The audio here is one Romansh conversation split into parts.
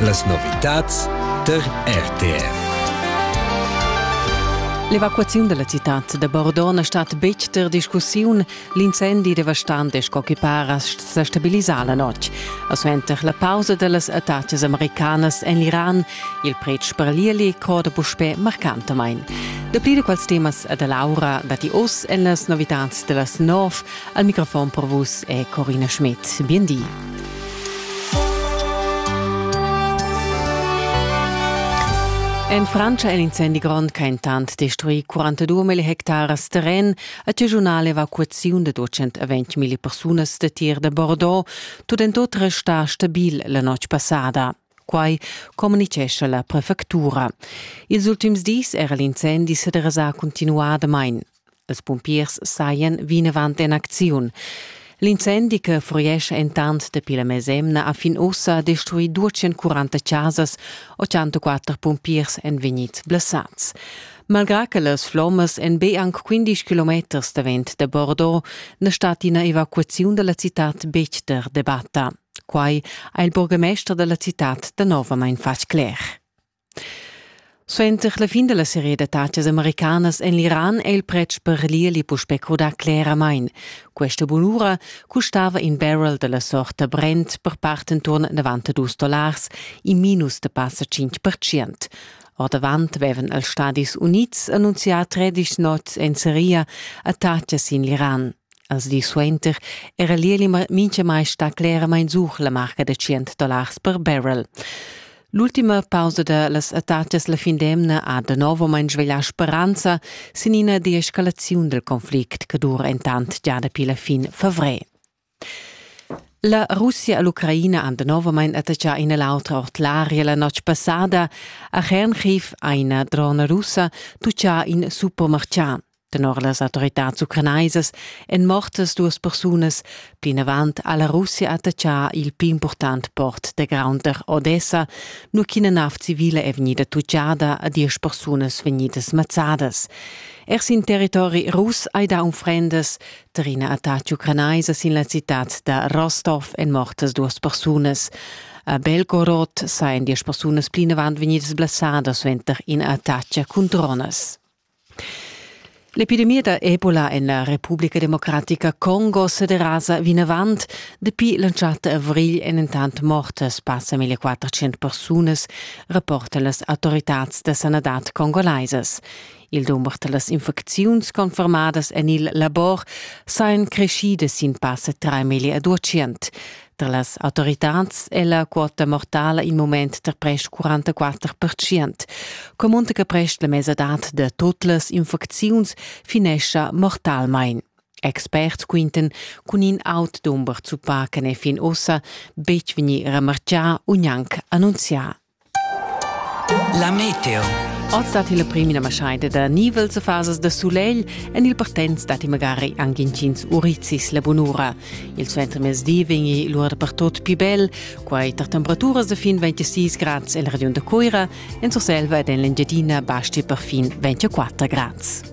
Las novitads tar RTR. L'evacuaziun dalla citad da Bordeaux na stat betg ter discussiun. L'incendi devastant e sco che para sa stabilisà la notg. A suenter la pausa dallas attacas americanas en l'Iran, il pretsch per l'Ieli corda puspè marcantamain. Dapli da quels temas da Laura datti oz en las novitads da las nov Al microfon per vus è Corina Schmidt. Biendi. En Francia è l'incendi grond che intant destruì 42.000 hectares terren a regionale evacuaziun de 220.000 persunas de tir de Bordeaux, tut en tut restà stabil la notg passada. Quai communitgescha la prefectura. Ils ultims dis era l'incendi sederasà cuntinuadamain. Els pumpiers sajan vinavant en acziun. L'incendi che furiescha entant dapi la mesemna a fin ussa ha destruì 240 chasas, 84 pumpiers èn vegnids blessads. Malgrà che las flommas èn be anc 15 kilometers davent da Bordeaux, na stat ina evacuaziun da la citad betg der debatta. Quai ha il burgamester da la citad danovamain fatg cler. Suenter la fin della serie d'attacas americanas en l'Iran è il pretsch per l'irli puspè crudà cleramain. Questa bunura custava in barrel della sorta Brent per part intorn 92 dollars, in minus da passa 5%. Ordavant avevan els Stadis Unids annunzià 13 nots en seria attacas in l'Iran. Als dis suenter era l'ieli mintgamai stà cleramain zuch la marca da tschient dollars per barrel. L'ultima pausa da las attatgas la fin d'emna ha danovamein sveglià speranza sin ina deescalaziun dal conflict che dura entant già dapi la fin favrer. La Russia e l'Ucraina han danovamein attaccà ina l'autra ord l'aria la notg passada. A Chernchiv ha ina drona russa tuccà in supermerchat. Tenor las autoritads ucranaisas èn mortas duas persunas. Plinavant ha la Russia attaccà il pli impurtant port da Graunter, Odessa, nua ch'ina nav civila è vegnida tutgada a diesch persunas vegnidas mazzadas. Er sin territori russ hai dà unfrendas. Tar ina attacca ucranaisa sin la citad da Rostov èn mortas duas persunas. A Belgorod sajan diesch persunas plinavant vegnidas blessadas suenter ina attacca cun dronas. L'epidemia da Ebola en la Republica Democratica Congo sederasa vinavant. Dapi l'entschatta avrigl èn entant mortas passa 1400 persunas, rapportan las autoritads da sanadad congolaisas. Il dumber da las infecziuns confermadas en il labor sajan crescidas sin passa 3 million a 200. Tar las autoritads è la quota mortala in mument tar prest 44 percient. Comunta che prest la mesadad da tut las infecziuns finescha mortalmain. Experts quinten cun in aut dumber zuppà che n'è fin ussa betg vegnì remartgà u gnanc annunzià. La meteo. Oz dat il prim ina maschaida da nivels e fasas da sulegl en il partenz datti magari anche intgins urizis la bunura. Il suentermezdi vegni l'ura dapertut più bel, quai tar temperaturas da fin 26 grads en la regiun da Cuira, en Surselva ed en l'Engiadina basti per fin 24 grads.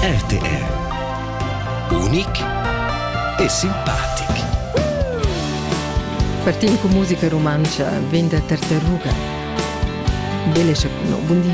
RTR Unic e simpatic. Partim cu musica rumantscha vegn da tartaruga. Belle no, buondì.